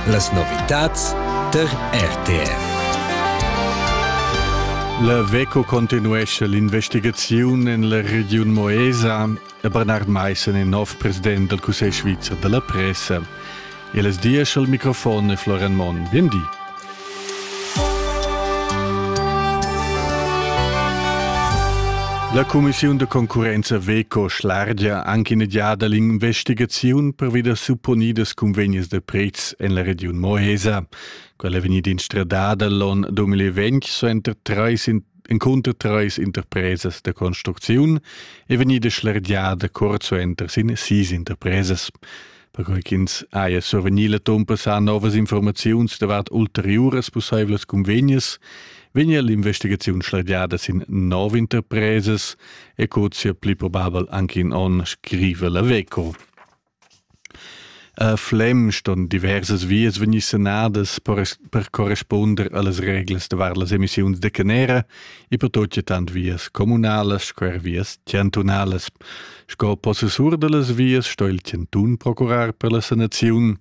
Las novitads tar RTR. La VECO continuescha l'investigaziun en la regiun Moesa e Bernard Maissen è nov president dal Cussegl svizzer da la pressa. E las dias al microfon è Florian Monn. Bien di. La cumissiun da concurrenza Veco schlargia anche in giada l'investigaziun pervi da supponidas cunvegnes da prezs en la regiun Mohesa. Quella è vegnida instradada l'on 2020 suenter treis encunter treis interpresas da construcziun e vegnida schlargiada curt suenter sin sis interpresas. perquei ch'ins haja survegni la tompa sa novas informaziuns davart ulteriuras pusseivlas convegnas, vegnia l'investigaziun schlagiada sin nov interpresas e cozia pli probabel anche in onn, scrive la Veco. A Flem ston diversas vias vegnir sanadas per corresponder allas reglas davart las emissiuns de canera e per tot tant vias comunalas sco er vias chantunalas. Sco possessur dallas vias sto il chantun procurar per la sanaziun.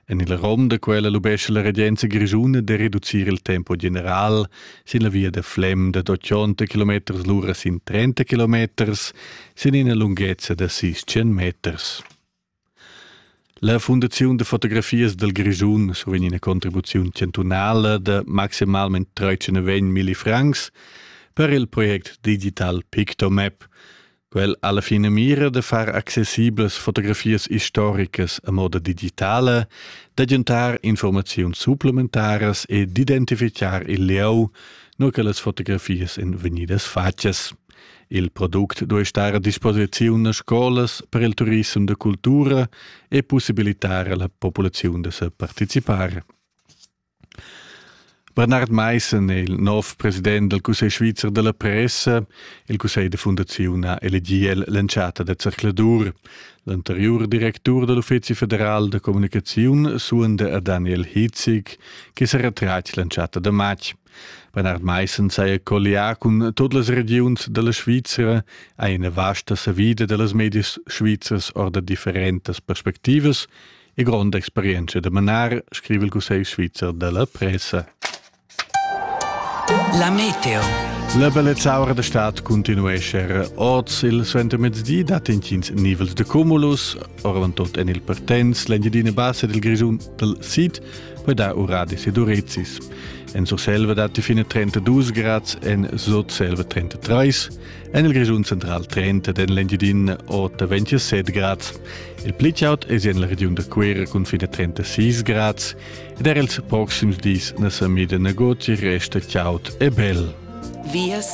En il rom da quella lubescha la regenza grischuna de reducir il tempo general sin la via da Flem da 80 km l'ura sin 30 km sin ina lunghezza da 600 meters. La fundaziun da fotografias dal Grischun survegn ina contribuziun chantunala da maximalmain 39.000 francs per il project digital Pictomap. Quel ha la finamira da far accessiblas fotografias istoricas a moda digitala, d'agentar informaziuns supplementaras e d'identifichar il lieu, nua che las fotografias èn vegnidas fatgas. Il product duei star a disposiziun a scolas per il turissem da cultura e possibilitar alla populaziun da separticipar. Bernard Meissen è il nov president del Cussegl svizzer della pressa. Il Cussegl de Fundazione ha elegiel l'entschatta da zercladur. L'anterior directur dell'Uffizi federal de comunicazione suonda a Daniel Hitzig, che se retratg l'entschatta de matg. Bernhard Meissen saja colliar cun tut las regiuns dalla Svizra ha ina vasta savida dallas medias svizras ord differentas perspectivas e gronda experienza da manar, scrive il Cussegl svizzer della pressa. La meteo. La bellezzaura da stat continuesce er oz il suentermezdi dat intgins nivels de cumulus, orvant tot en il Pertens, l'Engiadina Bassa del Grischun del Sid, per dar uradis ed urezis. En Surselva datti fine 32 grads, en Sotselva 33, en il Grischun central 30 ed en l'Engiadin 27 grads. Il plichaut è en la regiun da Cuera cun fine 36 grads ed er ils proxims dis na sa mida negozi resta chaud e bel. Vias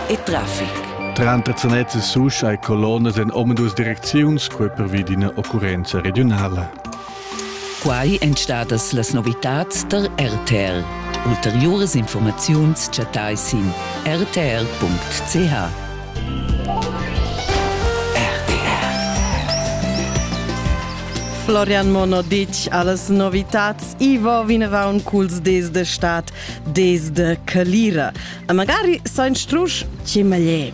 e traffic. Tranter Zanez e Susch hai colonnas en omadus direcziuns quei pervi d'ina occurrenza regionala. Quai èn stadas las novitads tar RTL. Ulteriuras informaziuns chattai sin rtl.ch. Florian Mono ditg a las novitats Ivo vineraun culs des de stat, des de calira. E magari sa instrusch ce meglio.